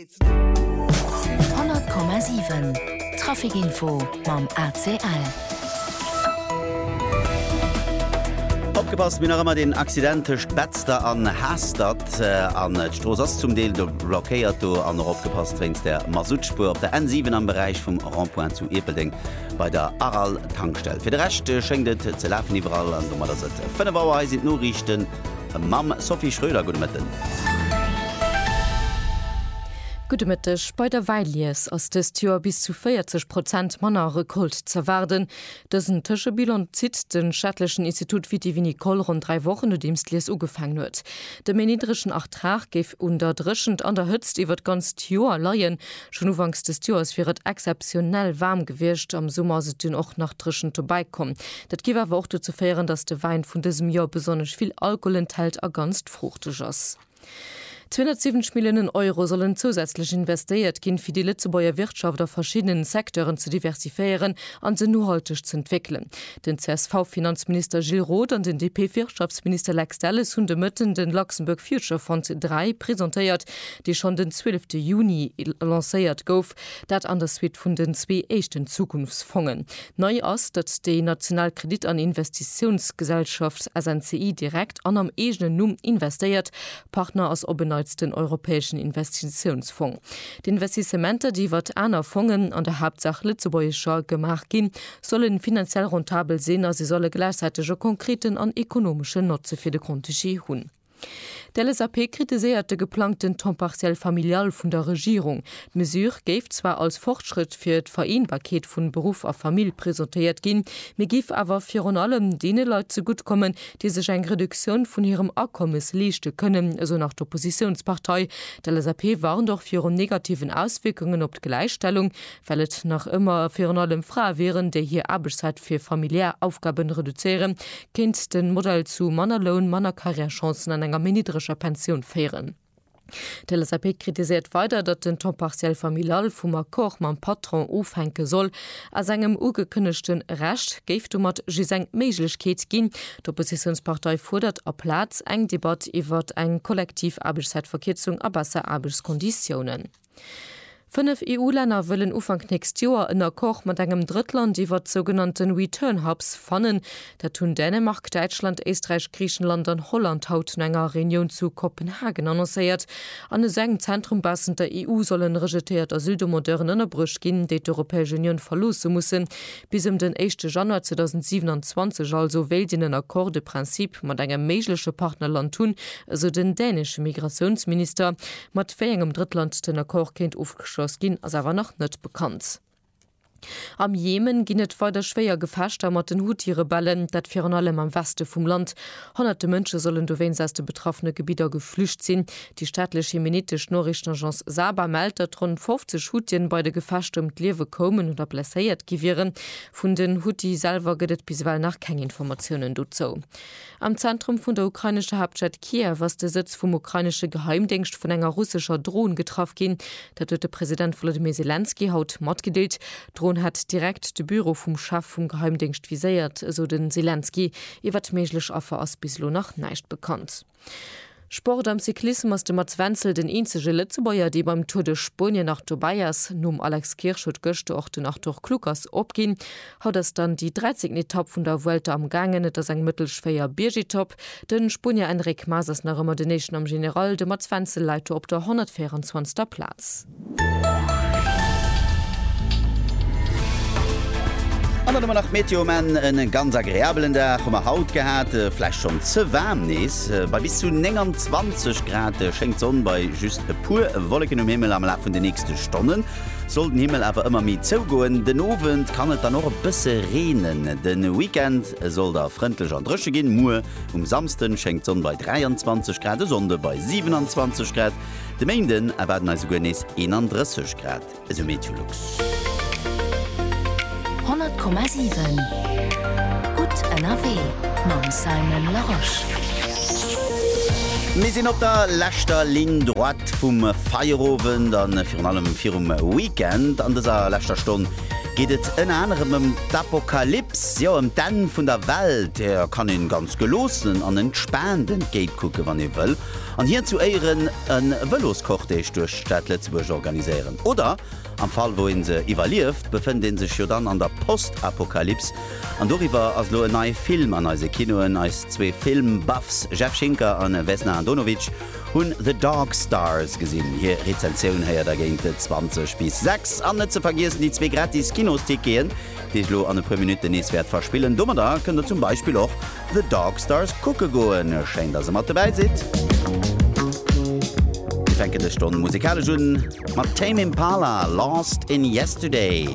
100,7 Trafic Info mam ACL. Opgepasst, mir nach ëmmer den Accident tëscht Betzder an Hastert. An äh, d'Strooss ass zum Deel do blockéiert do an och opgepasst wéinst der Masutspuer op der N7 am Beräich vum Rondpoint zu Ierpeldeng bei der Aral Tankstell. Fir de Recht äh, schéngt et ze lafen iwwerall an domat ass et 5 Auer eis Noriichten. Mam Sophie Schröder, gudde Mëtten. Gudde Mëtteg. Bei der Wäilies ass dëst Joer bis zu 40 Prozent manner Recolte z'erwaarden. Dësen Tëschebilan zitt de staatlechen Institut Viti-Vinicole ronn dräi Wochen nodeems d'Lies ugefaangen huet. De méi niddregen Ertrag géif un der Dréchent an der Hëtzt iwwert d'ganzt Joer leien, Schonn ufanks dëst Joers wier et exzeptionell waarm gewiescht, am Summer ass et dunn och nach dréchent dobäi komm. Dat géif awer och dozou féieren, datt de Wäin vun dësem Joer besonnesch vill Alkohol enthält a ganz fruuchteg ass. 270 Milliounen Euro sollen zousätzlech investéiert ginn, fir déi Lëtzebuerger Wirtschaft a verschiddenen Secteuren ze diversifiéieren an se nohalteg z'entwéckelen. Den CSV-Finanzminister Gilles Roth an den DP-Wirtschaftsminister Lex Delles hunn de Mëtten de Luxembourg Future Fund 3 presentéiert, dee schonn den 12 de Juni lancéiert gouf, dat an der Suite vun den zwee éischten Zukunftsfongen. Nei ass, datt déi national Kredit an Investitiounsgesellschaft SNCI direkt an am eegenen Numm investéiert. Partner ass op en Neits den Europäeschen Investitiounsfong. D'Investissementer, déi iwwert aner Fongen, an der Haaptsaach lëtzebuergescher, gemaach ginn, sollen finanziell rentabel sinn a se solle gläichzäiteg e konkreten an ekonomeschen Notze fir de Grand-Duché hunn. D'LSAP kritiséiert de geplangten Temps partiel familial vun der Regierung. D'Mesure géif zwar als Fortschrëtt fir d'Vereenbarkeet vun Beruff a Famill presentéiert ginn, mee géif awer virun allem deene Leit zegutt kommen, déi sech eng Reduktioun vun hirem Akommes leeschte kënnen, esou nach d'Oppositiounspartei. D'LSAP warnt och virun negativen Auswierkungen op d'Gläichstellung. well et nach ëmmer a virun allem Frae wieren, déi hir Aarbechtszäit fir familiär Aufgaben reduzéieren, kéint den Modell zu manner Loun, manner Carrièrechancen an enger méi niddreger Pensioun féieren. D'LSAP kritiséiert weider, datt den Temps partiel familial vum Accord mam Patron ofhänke soll. Aus engem ugekënnegten Recht géif domat just eng Méiglechkeet ginn. D'Oppositiounspartei fuerdert aplaz eng Debatt iwwert eng kollektiv Aarbechtszäitverkierzung a besser Aarbechtskonditiounen. Fënnef EU-Länner wëllen Ufank nächst Joer en Accord mat engem Drëttland iwwert d'sougenannten Return Hubs fannen. Dat hunn Dänemark, Däitschland, Éisträich, Griichenland an Holland haut no enger Reunioun zu Kopenhagen annoncéiert. An esou engem Zentrum baussent der EU sollen rejetéiert Asyldemandeuren ënnerbruecht ginn, déi d'Europäesch Unioun verloosse mussen. Bis ëm den éischte Januar 2027 also wéilt een en Accord de principe mat engem méigleche Partnerland hunn, esou den dänesche Migratiounsminister. Mat wéi engem Drëttland den Accord kéint ofgeschloss ginn, ass awer nach net bekannt. Am Jemen ginn et weider schwéier Gefechter mat den Huthi-Rebellen, dat virun allem am Weste vum Land. Honnerte Mënsche sollen dowéinst aus de betraffene Gebidder geflücht sinn. Déi staatlech jemenitesch Noriichtenagence Saba mellt, datt ronn 50 Huthien bei de Gefechter ëm d'Liewe koumen oder blesséiert gi wieren. Vun den Huthi selwer gëtt et bis ewell nach keng Informatiounen dozou. Am Zentrum vun der ukrainescher Haaptstad Kiew ass de Sëtz vum ukrainesche Geheimdéngscht vun enger russescher Dron getraff ginn. Dat huet de President Wolodymyr Selenskyj haut matgedeelt. D'Dron hätt direkt de Büro vum Chef vum Geheimdéngscht viséiert, esou de Selenskyj. Iwwert méiglech Affer ass bis elo nach näischt bekannt. Sport am Cyclissem ass de Mats Wenzel den eenzege Lëtzebuerger, dee beim Tour de Spuenien nach dobäi ass. Nom Alex Kirsch huet gëschter och den Arthur Kluckers opginn. Haut ass dann déi dräizéngten Etapp vun der Vuelta am gaangen. Et ass eng mëttel schwéier Biergetapp. De Spuenier Enric Mas ass nach ëmmer den Éischten am General. De Mats Wenzel läit do op der 124. Plaz. An dann hu mer nach d'Meteo, men en ganz agreabelen Dag hu mer haut gehat, vläicht schonn ze waarm nees. Bei bis zu 29 Grad schéngt d'Sonn bei just e puer Wolleken um Himmel. Am Laf vun de nächste Stonnen soll den Himmel awer ëmmer méi zougoen, den Owend kann et dann och e bësse reenen. De Weekend soll da frëndlech an dréche ginn, muer um Samsden schéngt d'Sonn bei 23 Grad, e Sonnde bei 27 Grad. De Méinden erwaarden eis esouguer nees 31 Grad, esou Meteolux. 100,7 Gutt ënnerwee mam Simon Larosche. Mir sinn op der leschter Ligne droite vum Feierowend a virun allem virum Weekend. An dëser leschter Stonn geet et ënner anerem ëm d'Apokalyps, jo ëm d'Enn vun der Welt. Där kann een ganz geloossen an entspaant entgéitkucken, wann ee wëll. an hien zu Éieren e Vëloscortège duerch d'Stad Lëtzebuerg organiséieren. Oder, am Fall wou ee se iwwerlieft, befënnt ee sech jo dann an der Postapokalyps, an doriwwer ass elo en neie Film an eise Kinoen. Eis zwee Film-Buffs Jeff Schinker a Vesna Andonovic hunn The Dark Stars gesinn. Hir Rezensioun héiert der géint 20 bis 6. An net ze vergiessen déi zwee gratis Kinosticketen, déi ech lo an e puer Minutten nees wäert verspillen. Domadder kënnt der zum Beispill och The Dark Stars kucke goen. Schéin, dass e mat dobäi sidd. Mir fänken dës Stonn musikalesch un mat Tame Impala, Lost in Yesterday.